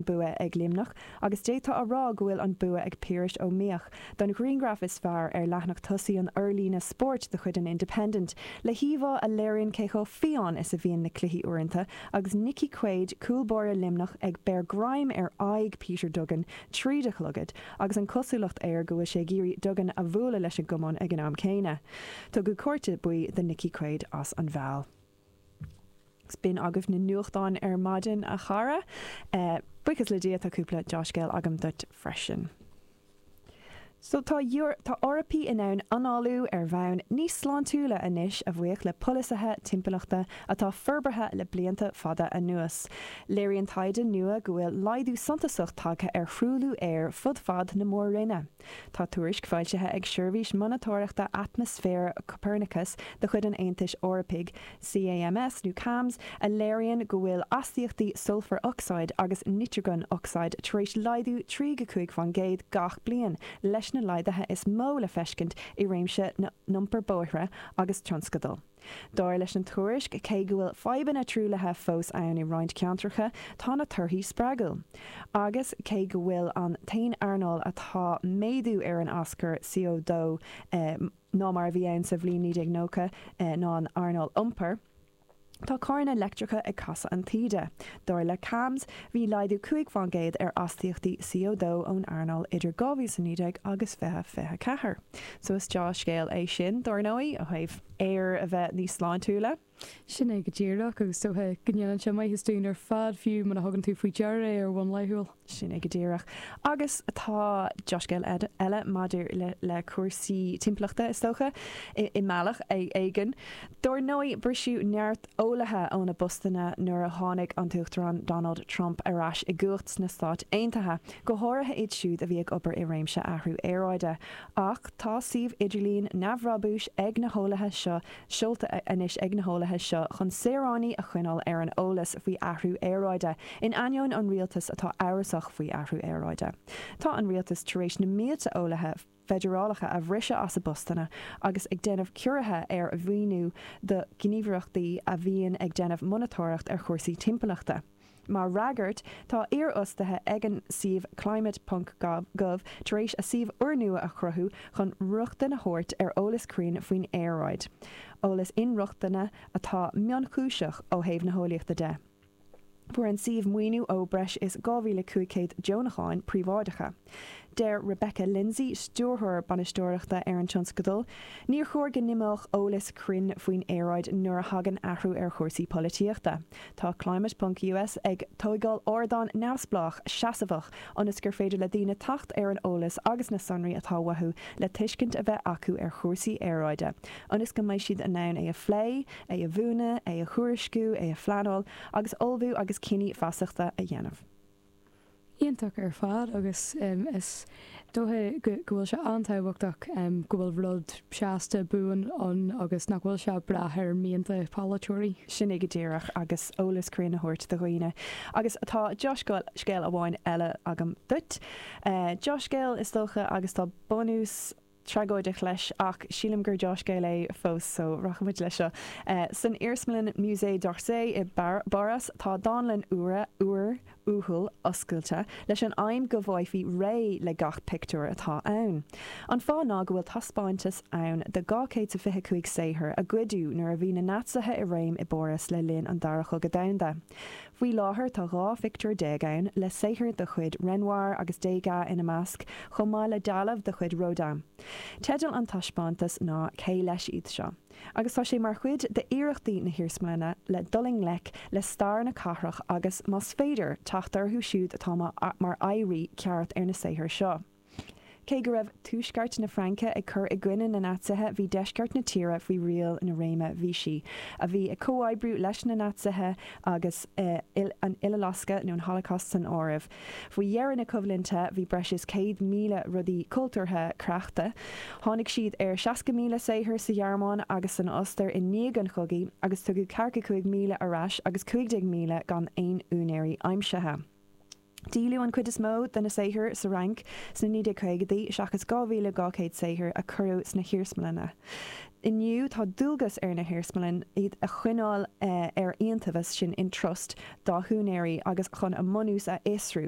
bua ag Luimneach agus d'fhéadfá a rá go bhfuil an bua ag Piaras Ó Mídheach don ghrianghraf is fearr ar leathnach tosaigh an fhorlíonaidh spóirt de chuid an Independent, le híomhá a léiríonn cé chomh fiáin is a bhíonn na cluichí uaireanta agus Nicky Quaid, cúl báire Luimnigh, ag breith greim ar aghaidh Peter Duggan tríd a chlogad agus an cosúlacht air go bhfuil sé ag iarraidh Duggan a bhualadh leis an gcamán ag an am céanna. Tugadh cárta buí do Nicky Quaid as an bhfeall. Sin agaibh na nuachtáin ar maidin, a chara. Buíochas le Dia, tá cúpla deá-scéal agam duit freisin. So, tá Tá Eorpaí in ann análú ar bhonn níos sláintiúla anois, a bhuíochas le polasaithe timpeallachta atá forbartha le blianta fada anuas. Léiríonn taighde nua go bhfuil laghdú suntasach tagtha ar thruailliú aeir fud fad na mór-roinne. Tá tuairisc foilsithe ag Seirbhís Monatóireachta Atmaisféir Copernicus de chuid an Aontais Eorpaigh, CAMS nó cams, a léiríonn go bhfuil astaíochtaí sulphur oxide agus nitrogen oxide tar éis laghdú 3 go 5 faoin gcéad gach bliain, leis na laghdaithe is mó le feiscint i réimse na n-iompair bóithre agus tionscadal. Dar leis an tuairisc, cé go bhfuil fadhbanna truaillithe fós ann i roinnt ceantracha, tá na torthaí spreagúil. Agus cé go bhfuil an t-aon earnáil atá méadú ar an aschur CO2 ná mar a bhí ann sa bhliain 1990 ná an earnáil iompair, tá carranna leictreacha ag casadh an taoide. Dar le CAMS, bhí laghdú cúig faoin gcéad ar astaíochtaí CO2 ón earnáil idir 2019 agus 2024. So is deá-scéal é sin, dár ndóigh, ó thaobh aer a bheith níos sláintiúla. Sin é go díreach, agus is dócha go ndéanann sé maitheas dúinn ar fad, fiú muna thugann tú faoi deara é ar bhonn laethúil. Sin é go díreach. Agus tá deá-scéal eile maidir le cúrsaí timpeallachta, is dócha, i mbealach éigin. Dár ndóigh, briseadh neart eolaithe óna bpostanna nuair a tháinig an tUachtarán Donald Trump ar ais i gcumhacht sna Stáit Aontaithe. go háirithe iad siúd a bhí ag obair i réimse athrú aeráide. Ach tá suíomh idirlín neamhbhrabúis ag na heolaithe seo seolta anois ag na heolaithe seo chun saoránaigh a choinneáil ar an eolas faoi athrú aeráide, in ainneoin an rialtas atá amhrasach faoi athrú aeráide. Tá an rialtas tar éis na mílte eolaithe a. feidearálacha a bhriseadh as a bpostanna agus ag déanamh ciorruithe ar mhaoiniú do ghníomhaireachtaí a bhíonn ag déanamh monatóireacht ar chúrsaí timpeallachta. Mar fhreagairt, tá iarfhostaithe ag an suíomh Climate ponc Gov tar éis a suíomh úrnua a chruthú chun rochtain a thabhairt ar eolas cruinn faoin aeráid, eolas inrochtana atá mionchúiseach ó thaobh na heolaíochta de. Fuair an suíomh maoiniú ó breis is 2,500 deonachán príobháideacha. Deir Rebecca Lindsay, stiúrthóir bainistíochta ar an tionscadal, Níor chóir go n-imeodh eolas cruinn faoin aeráid nuair a thagann athrú ar chúrsaí polaitíochta. Tá Climate ponc US ag tógáil ardán neamhspleách, seasmhach ionas gur féidir le daoine teacht ar an eolas agus na sonraí atá uathu le tuiscint a bheith acu ar chúrsaí aeráide, ionas go mbeidh siad in ann é a phlé, é a mhúineadh, é a thuairisciú, é a phleanáil agus ullmhú agus cinní feasachta a dhéanamh. Iontach ar fad agus is dócha go bhfuil sé an-tábhachtach go bhfuil rud seasta, buan ann agus nach bhfuil sé ag brath ar mhianta polaiteoirí. Sin é go díreach agus eolas cruinn a thabhairt do dhaoine. Agus tá dea-scéal amháin eile agam duit. Dea-scéal is dócha agus tá bunús. tragóideach leis, ach sílim gur dea-scéal é fós, so rachaimid leis seo. San iarsmalann Musée d'Orsay i bPáras, tá dánlann úr, uathúil, oscailte, leis an aidhm go bhfaighfí réidh le gach pictiúr atá ann. An fáth ná go bhfuil taispeántas ann de dhá chéad 's a fiche cúig saothar a goideadh nuair a bhí na Naitsithe i réim i bPáras le linn an Dara Cogadh Domhanda. Faoi láthair tá 12 phictiúr ann, le saothair de chuid Renoir agus Degas ina measc, chomh maith le dealbh de chuid Rodin. Teideal an taispeántais ná Cé leis iad seo? agus tá sé mar chuid d'iarrachtaí na hiarsmalainne le dul i ngleic le stair na cathrach agus, más féidir, teacht orthu siúd atá mar oidhrí cearta ar na saothair seo. Cé go raibh tuaisceart na Fraince ag cur i gcoinne na Naitsithe, bhí deisceart na tíre faoi riail an réime Vichy, a bhí ag comhoibriú leis na Naitsithe, agus an Uileloscadh, nó an Holocaust, san áireamh. Faoi dheireadh na coimhlinte, bhí breis is 100,000 rudaí cultúrtha creachta. Tháinig siad ar 60,000 saothar sa Ghearmáin agus san Ostair i ndiaidh an chogaidh, agus tugadh 45,000 ar ais agus 15,000 gan aon úinéirí aimsithe. Díoladh an chuid is mó de na saothair sa Fhrainc sna 1950idí, seachas 2,200 saothar a cuireadh sna hiarsmalanna. Inniu tá dualgas ar na hiarsmalanna iad a choinneáil ar iontaobhas sin in trust dá n-úinéirí agus chun a mbunús a fhiosrú.